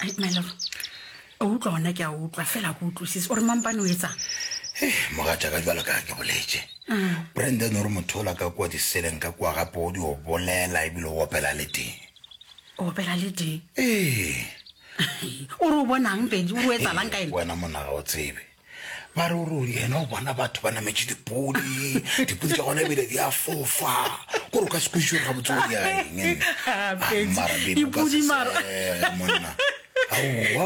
Ai, my love o utlwa gona ke a utlwa fela go utlwisise o re mampane o etsang mogatša ka jalo ka ke boletše brandon o re motho ola ka kua diseleng ka kua gape o di o bolela ebile o opela le teng o opela le teng ee o re o bonang pedi o re o etsalang ka ene wena monaga o tsebe ba re ore yena o bona batho ba nametše dipodi dipodi tša gona ebile di a fofa kore o ka se kwešišo ga botse gore yaengmonna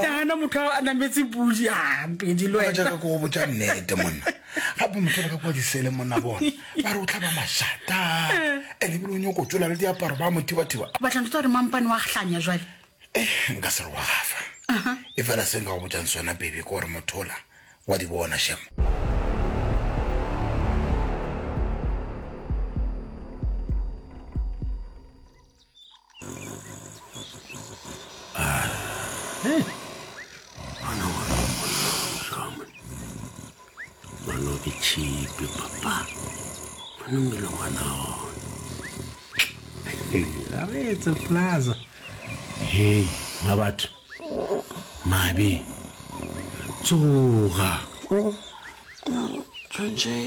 nagana motho a nametse podi ampedi lojaka ko botsa nnete monna gape motho ba ka kwa disele monna bona ba re o tlhaba mašata ande ebile o nyoko tsola le diaparo ba mothibathiba batlanto tsa gore mampane wa hlanya jale Eh, nka se re wa gafa. Aha. Efela se nka go botšang sona, Bebe, ke gore mothola wa di bona, Shem. Bana ke tšhipi papa bana mmele ngwana ona re etse plaza hei ma batho mabe tsoga tshwantšhe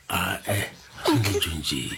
ae tshwantšhe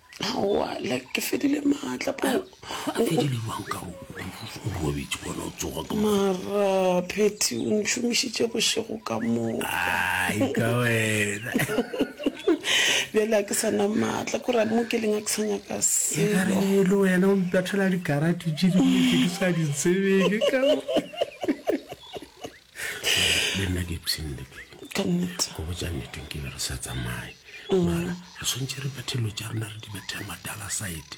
aowa like ke fedile maatla po robetse gona o tsoga ka mara phetty o ntšhomišitše bošego ka moka wena bjale a ke sa na maatla kore mo ke leng a ke sa nyaka seelo wena o mpethela dikarate tše dintse ke sa di tsebeke ka le nna ke ipseng le ke ka nnete go botsa nnete nke be re sa tsamaye mara re tshwanetse re bathelo tša rena re di bathela madala side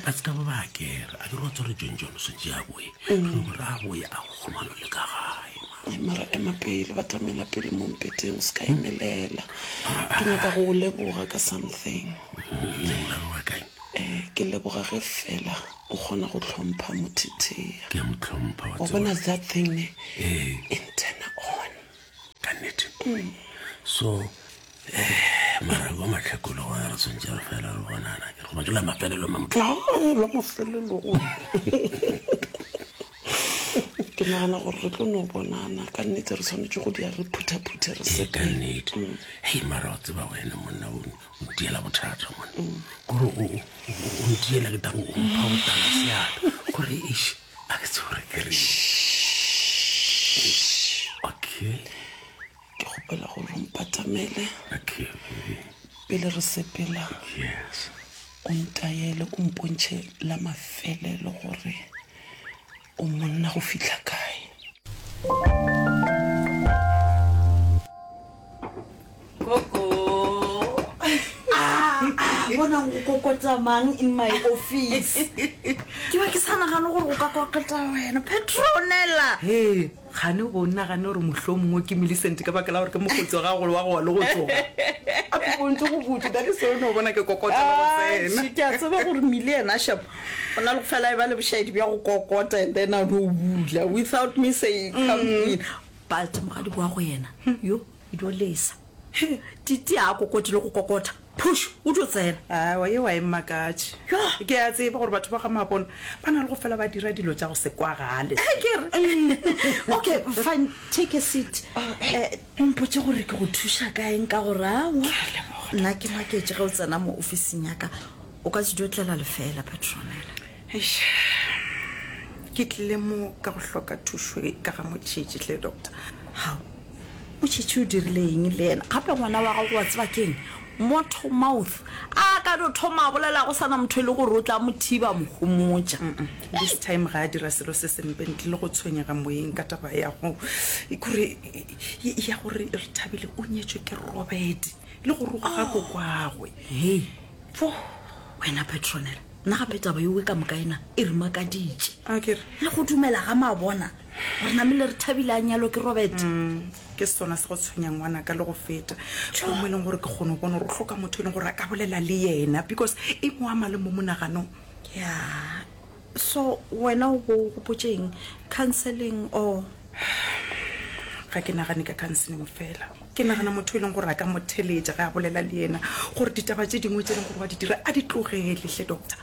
ba se ka ba ba kere a ke re wa tsware jon jon o swantse ya boe re no go ra boe a go kgomano le ka gae mara. Ai, mara ema pele ba tlamela pele mo mpeteng o se ka emelela ke nyaka go o leboga ka something nna wa kae um ke leboga ge fela o kgona go tlhompha mothithea ke a mo tlhompha wa wa tseba. bona that thing ne Ee. e ntena on ka nnete so eh, mara wa matlhakolo gona re tshwantse re fela re bonana ke goba jela mafelelo ma motho Ai, la mafelelogo ke nagana gore re tlo no bonana ka nnete re tshwanetse go dia re phuthaphuthe re se ka nnete hei mara wa tseba wena monna o ntiela bothata mone kore o ntiela ke tabo o mpha go tala seata gore ish a ke tsebore kere okay ke gopela gore o mpatamele okay pele re sepela yes o ntayele o mpontšhe la mafelelo gore O monna go fihla kae? bona go kokotamang in my office ke ba ke sa nagane gore go ka kokota wena petronela Kgane go nagane gore mohlomongwe ke Millicent ka baka la gore ke mokgotsi wa gago le wa gowa le go tsoga. A ke bontše go botse, that is o no bona ke kokota le go tsena. Atšhe, ke a tseba gore Millie yena shame o na le go fela e ba le bošaedi bja go kokota and then a no bula without me saying come in. But mogadiko wa go yena, yo E dio lesa. He, Titi a kokoti le go kokota. Phush! O dio tsena. Aowa, yeo ga e mmakatše. Yoh! Ke a tseba gore batho ba ga Mabona ba na le go fela ba dira dilo tša go se kwagale. He, ke re. Okay, fine, take a seat. Eh, o mpotše gore ke go thuša ka eng ka gore aowa, nna ke maketše ge o tsena mo ofising ya ka. O ka se dio tlela lefeela, Petronella. Eish, ke tlile mo ka go hloka thušo e ka ga motšhetši tle doctor. Hao, motšhetši o dirile eng le yena? Gape ngwana wa gago wa tseba keng? Motho mouth. A ka no thoma a bolela go sana motho e le gore o tla mo thiba mo gomotša. This time ga a dira selo se sempe ntle le go tshwenyega moyeng ka taba ya go e kore ya gore re thabile o nyetšwe ke Robert le go roga ga kokwagwe. Hei, fo wena Petronella. Nna gape taba yeo e ka moka ena e re makaditše. A ke re. Le go dumela ga mabona gore namele re thabile a nyalwa ke Robert. Mm, ke sona se go tshwenyang ngwana ka le go feta. Go mo e leng gore ke kgone go bona gore o hloka motho e leng gore a ka bolela le yena because e mo ama le mo monaganong. Yeah. So wena o bo gopotšeng counseling or Ga ke nagane ka counseling fela. Ke nagana motho yo e leng gore a ka mo theletša ge a bolela le yena gore ditaba tše dingwe tše e leng gore wa di dira a di tlogele hle doctor.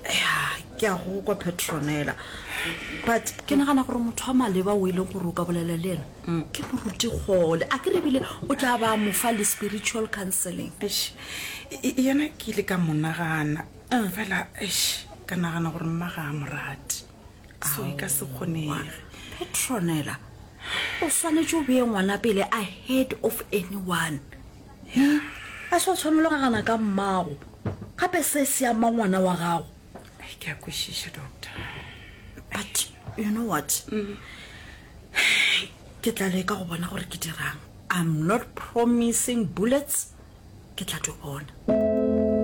Ya, ke a go kwa Petronella. But ke nagana gore motho wa maleba o e leng gore o ka bolela le yena ke moruti kgole. A ke re ebile o tla ba mo fa le spiritual counseling. Eish, e- e- yena ke ile ka mo nagana fela eish ka nagana gore mma ga a mo rate. so e ka se kgonege petronela o swanetše o beye ngwana pele a head of anyone e a se o tshwanelo gagana ka mmago gape se se ama ngwana wa gago ke a kwešiša doctor but you know what mm. ke tla leka go bona gore ke dirang i'm not promising bullets ke tla di bona